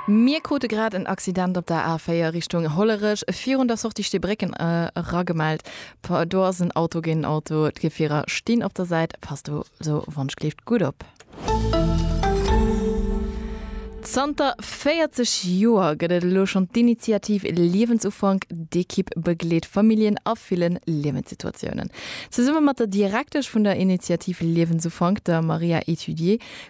Mir krute grad en Accident op der A4 Richtung Hollerech, virun der Sortie Steebrécken era gemellt. Do ass en Auto géint en Auto, d'Gefierer stinn op der Säit. Passt also wannschgléift gutt op. Zanter 40 Joer gëtt et elo schonn d'Initiativ Liewensufank. D'Ekipp begleet Familljen a ville Liewenssituatiounen. Zesumme mat der Direktesch vun der Initiativ Liewensufank, der Maria Ethidier,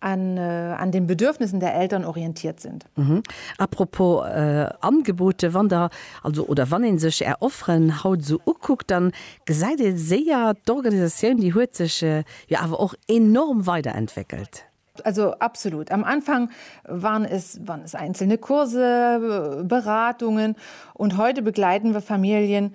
an an den Bedürfnissen der Eltern orientiert sind. Mhm. Apropos äh, Angebote, wann der also oder wann een sech är Offeren haut esou ukuckt, dann gesäit ee séier, d'Organisatioun déi huet sech äh, jo awer och enorm weiderentwéckelt. Also absolut. Am Anfang waren es waren es einzelne Kurse, Beratungen und heute begleiten wir Familien